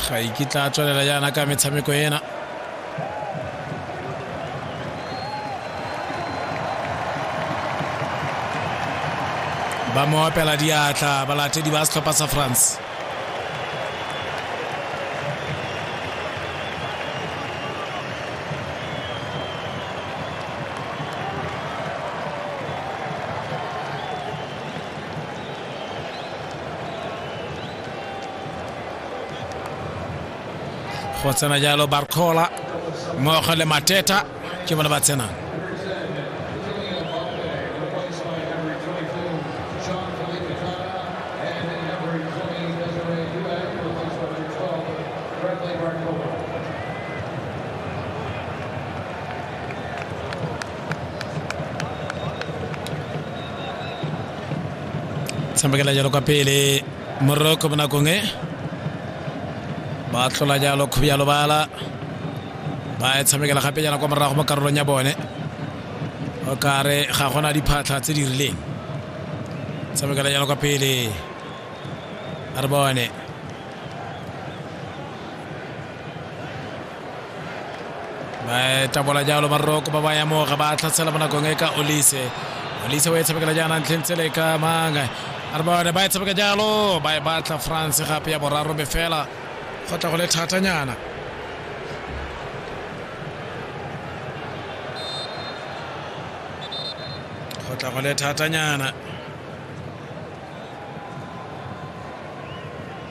ga ikitla a tswelela yana ka metshameko ena ba mo opela diatla balatedi ba setlhopha sa france go tsena jalo barcola mmogo le mateta ke bone ba tsenang tshamekela jalo kwa pele moroko mo nakong e ba tlhola jalo kgobjalo bala ba e tshamekela gape jana kwa morago mo karolong ya bone o kare ga gona diphatlha tse di rileng tshamekela jalo kwa pele a re bone ba tabola jalo maroko ba ba ya moga ba tlhatshela mo nakong e ka olise olise o e tshamekela jaana ntlheng tsele ka mang a re bone ba e tshameka jalo ba e batla france gape ya boraro me fela go tla go le thatanyana go tla go le thatanyana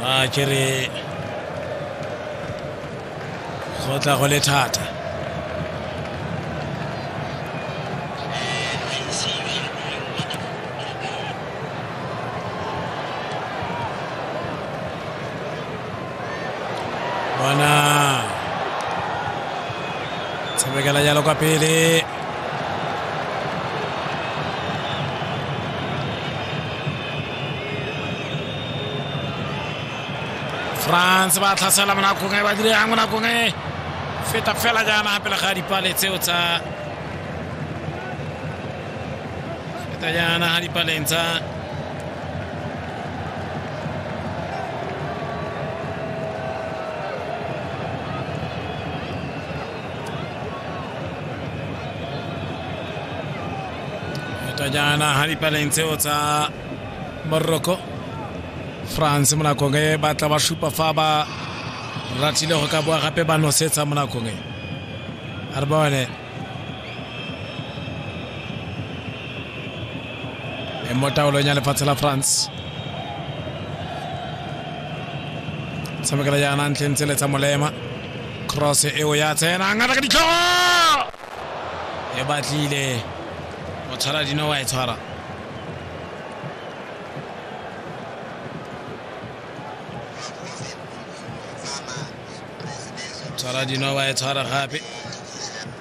ba ke re go tla go le thata bona tshamekela jalo kwa pele france ba tlhasela mo nakong e ba dire yang mo nakong e feta fela jaana pele ga dipale tseo tsa feta jaana ga dipaleng tsa Tutajana na hali pale ntseo tsa Morocco France mo nakong e ba tla ba supa fa ba ratile go ka boa gape ba nosetsa mo nakong e a re bone e mo taolong ya lefatshe la France tshamekela jaana ntlheng tsele tsa molema cross eo ya tsena ngata ka ditlhogo e batlile o tshwara dino wa e tshwara tshwara dino wa e tshwara gape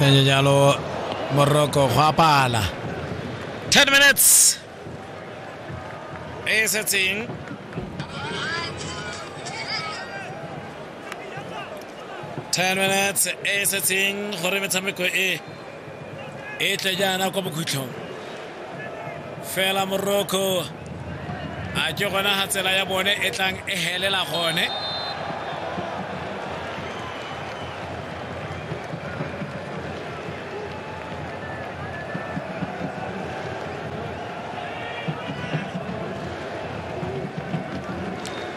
tsenye jalo moroko go a pala 10 minutes e setseng ten minutes e setseng gore metshameko e e tle jaana kwa bokhutlhong fela morocco a ke gona ga tsela ya bone e tlang e helela gone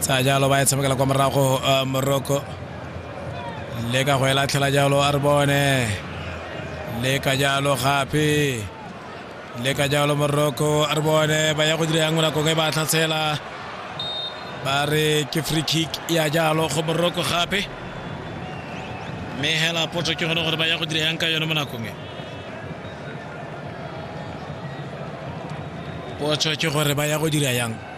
tsaya jalo ba e tshamekela kwa morago uh, morocco le ka go e latlhela jalo a re bone le ka jalo gape le ka jalo morocco a re bone ba ya go dira yang mo nakong e ba tlhatshela ba re ke free kick ya jalo go morocco gape mme hela potso ke gone gore ba ya go dira yang ka yone mo nakong e potso ke gore ba ya go dira yang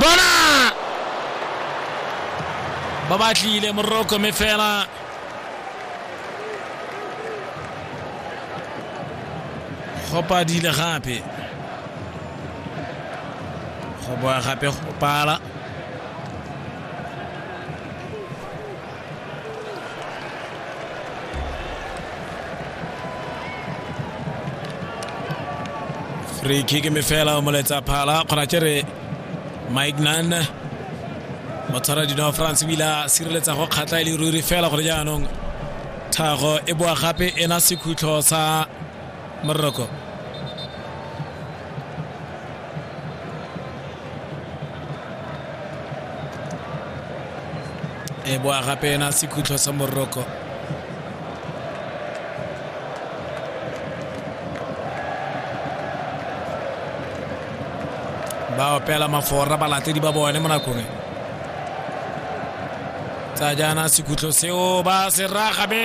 bona ba batlile moroko mme fela go padile gape go boa gape go pala free kick mme fela o moletsa phala kgona ke re mike nan motshwara dino france ebile a sireletsa go kgatlha e le ruri fela gore jaanong tlhago e boa gape ena sekhutlo sa mën na ko e bo a gape ena sekhutlo sa moroko ba opela mafora balatedi ba bone mo nakong e tsa jaana sekhutlo seo ba se raga be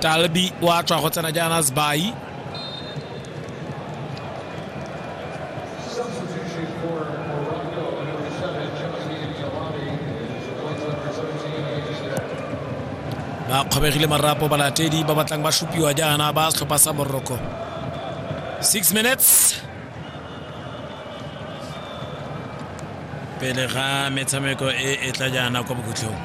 talbi wa tswa go tsena jaana sbai ba kgobegile marapo balatedi ba batlang ba supiwa jaana ba setlhopha sa morocco six minutes pele ga metshameko e e tla jaana kwa bokhutlhong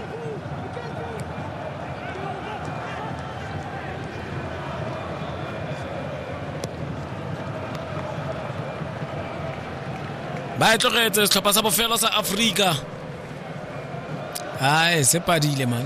ba e tlogetse setlhopha sa bofelo sa aforika ai se padile man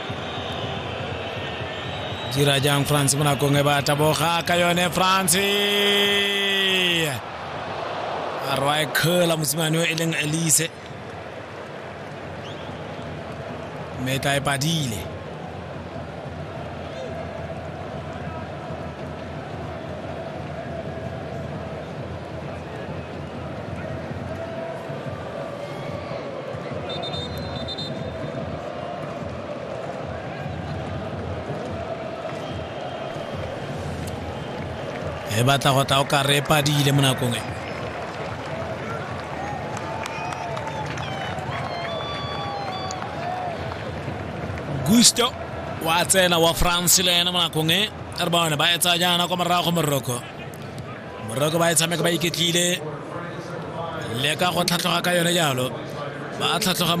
dira jang france mo nakong e ba taboga ka yone france a rwa e khela mosimane o e leng elise mme tla e padile e batla go tla o ka re padile mo nakong e gusto wa tsena wa france le ena mo nakong e re bone ba etsa jaana kwa morago moroko moroko ba e tshameka ba iketlile leka go tlhatlhoga ka yone jalo ba tlhatlhoga